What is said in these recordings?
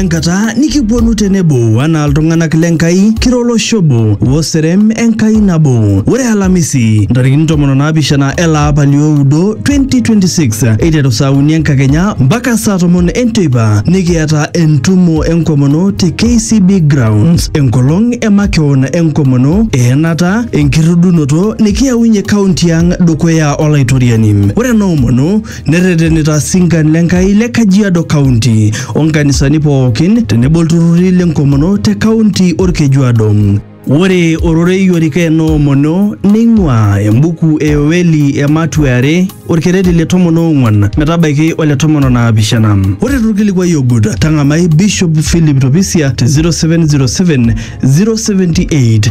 enkata nikiponu tenebo anaa iltung'anak le Nkai kira olosho obo oserem Enkai nabo. Ore Alamisi ntarikini tomon onaapishana ele apa lioudo 2026 eiteru saa uni enkakenya mpaka saa tomon enteipa nikiata entumo enkomono te KCB Grounds enkolong e makeon enkomono eenata enkirridunoto nikiyaunye kaunti ang dukuya Olaitoriani. Ore ena omono Nerretenita sinkan le Nkai le Kajiado County o nkanisani pookin tenebo ilturrurri le nkomono te kaunti Olkejuado. Ore ororei orika enoomono neing'uaa embuku e Yoeli ematua e are olkereri le tomon oong'uan metabaiki ole tomon o naapishana. Ore tolkilikuai ogut tang'amai Bishop Philip Topisia te 0707 078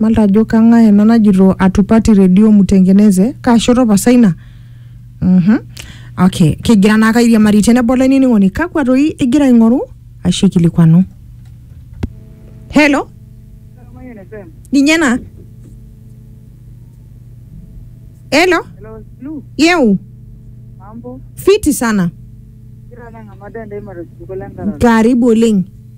Malta ajo kang'ae ena najito atupati redio mutengeneze kaa shoto pasa ina Mhm. okay kigira naake airiamari tenebo olainining'oni kakwa toi igira aing'oru ashu aikilikwanu helo ninye ena helo Hello, Lu, yeu mambo. fiti sana Kira na ngamada ndai mara suko la ngara. karibu oleng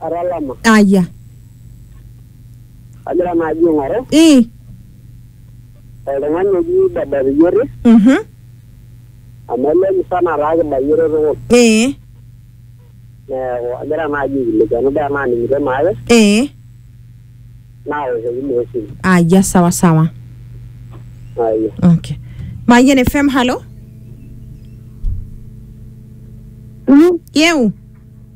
atalama aya agira naaji aing'oru ii oltung'ani oji baba Riyiore mhm amu ele musana taa kibayioro tukul ee neeku agira naaji aikilikuanu paa enaaning'ito naake ee naoshoki naa esimu aya sawa sawa aya okay mayian fm halo yeu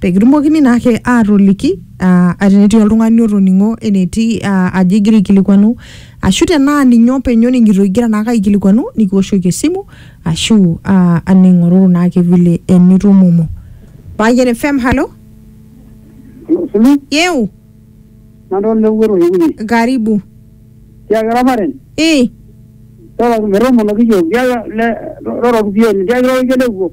pee kitumokini naake aatoliki ah, tenetii oltung'ani otoning'o enetii ah, ajo igira aikilikuanu ashu tenaa ninye openy oning'ito igira naake aikilikuanu nikiwoshoki esimu ashu ah, aning'oruru naake vile enitumomo Payian FM halo Sulu, yeu nadol lewuero yewuye. karibu Tiaki raparen, eh toroki metoomonoki yiok. Tiaki le, toroki pieni. Tiaki lororike lewuo.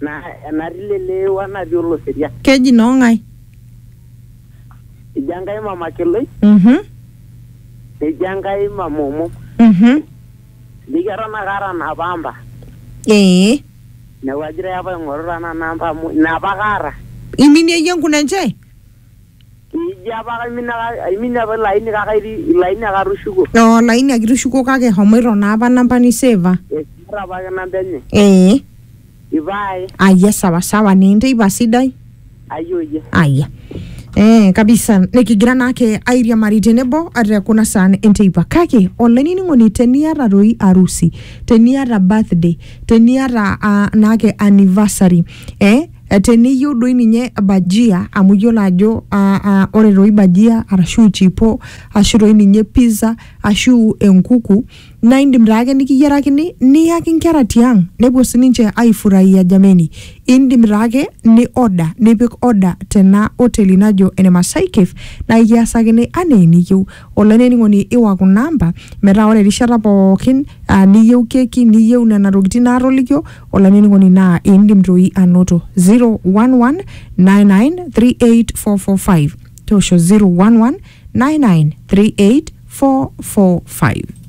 Naa enatii leleeo enatii oloseria. Keji noo ng'ae? Eji Enkai Mama Keloi. Mhm. Neji Enkai Mama Omom. Mhm. Neji eton ake aata napa amba. Ee. Neeku agira apa aing'oru tenaa namba amu inapa ake aata. Iminie iyie enkunenje? Ijo apa kaimina kake aimina apa ilo aini kake atii ilo aini ake atushuko. oo laini ake itushukuo kake homoito naa apa namba niseva Eisita apa ake namba enye. ee Ipae. ayia sawasawa naa enteipa sidai Ayoyie. ayia ee kabisa nikigira naake airiamari tenebo ate kuna saan enteipa kake olainining'oni teniata toi arusi teniata birthday teniata uh, naake anniversary eh, Eh, teniyieu doi ninye bajia amu iyiolo ajo ah, ah, ore doi bajia arashu chipo ashu doi ninye pizza ashu enkuku naa indim taake nikiyierakini niyaki inkera tiang nepuo sininche aifurahia jameni indim taake ni order nipik order tena oteli najo ene Masai Cafe naa ikiasakini anaa eniyieu Olainining'oni iwa kuna amba metaa ore erishata pookin aa niyieu keki niyieu nena tokitin naatolikio olainining'oni naa indim toi anoto 011-9938445 toosho 011-9938445.